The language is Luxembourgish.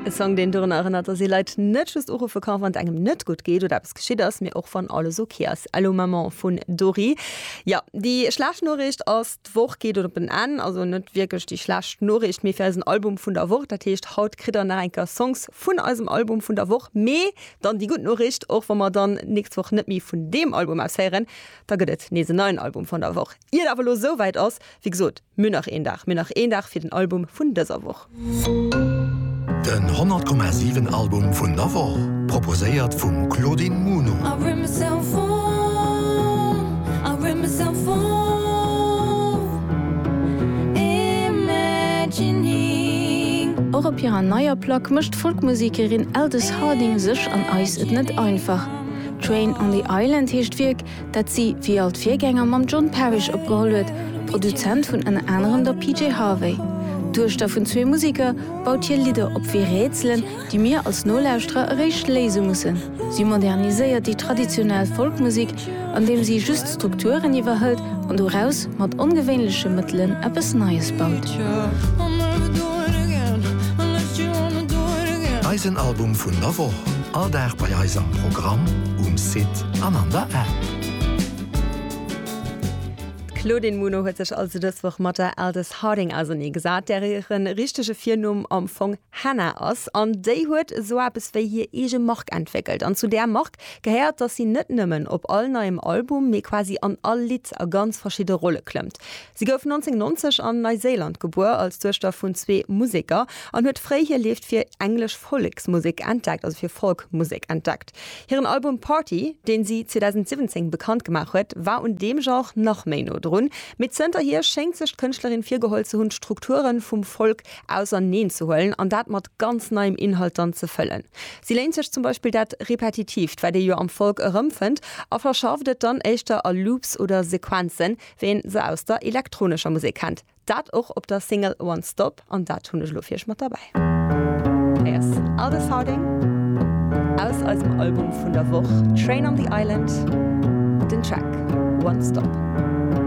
E Song, deen dorun erënnert, dass ee Leit net just uruffe kann, wann et engem net gutt geet oder eppes geschitt ass, mee och wann alles ok ass. Allô Maman vun Dori. Jo, déi schlecht Noriicht ass, d'Woch geet op en Enn. Also net wierklech déi schlecht Noriicht, mee fir eisen Album vun der Woch. Dat heescht, haut kritt der nach eng Kéier Songs vun eisem Album vun der Woch. Mee dann déi gutt Noriicht, Och wa mer dann d'nächst Woch net méi vun deem Album aus héieren, da gëtt et nees en neien Album vun der Woch. Ier et awer elo esou wäit ass, wéi gesot, mir hunn nach een Dag, mir hunn nach een Dag fir den Album vun dëser Woch. Den 100,7 Album vun der Woch, proposéiert vum Claudine Muno. Och op hirer neier Plack mécht d'Folkmusekerin Aldous Harding sech an eis et net einfach. Train on the Island heescht d'Wierk, dat si wéi all d'Virgänger mam John Parish opgeholl huet, Produzent vun ënner anerem der PJ Harvey. D'Duechter vun zwee Museker baut hir Lidder op wéi Rätselen, déi mir als Nolauschterer eréischt léise mussen. Si moderniséiert déi traditionell Folkmusek, andeem si just d'Strukturen iwwerhëlt an doraus mat ongewéinleche Mëttelen eppes Neies baut. Eisen Album vun der Woch, all Dag bei eis am Programm, um Site. an an der App. D'Claudine Muno huet sech also dës Woch mat der Aldous Harding auserneegesat, där hire richtege Virnumm am Fong Hannah ass. An déi huet esou eppes wéi hir eege Mark entwéckelt. An zu där Mark gehéiert, datt si net nëmmen op all neiem Album, mee quasi an all Lidd a ganz verschidde Rolle klëmmt. Si gouf 1990 an Neiséiland gebuer als Duechter vun zwee Museker an huet fréi hir Leeft fir englesch Volleksmusek entdeckt, also fir Folk-Musek entdeckt. Hiren Album Party, deen si 2017 bekannt gemaach huet, war un deem Genre nach méi no drun, mee zënterhier schéngt sech d'Kënschtlerin virgeholl ze hunn, d'Strukture vum Folk auserneen ze huelen an dat mat ganz neiem Inhalt dann ze fëllen. Si léint sech zum Beispill dat Repetitiivt, wat ee jo am Folk erëmfënnt, a verschafft et dann éischter a Loops oder Sequenzen, wéi een se aus der elektronescher Musek kennt. Dat och op der Single One Stop an dat hunn ech elo fir iech mat derbäi. Hei ass Alde Farding aus eisem Album vun der Woch Train on the Island, den Track One Stop.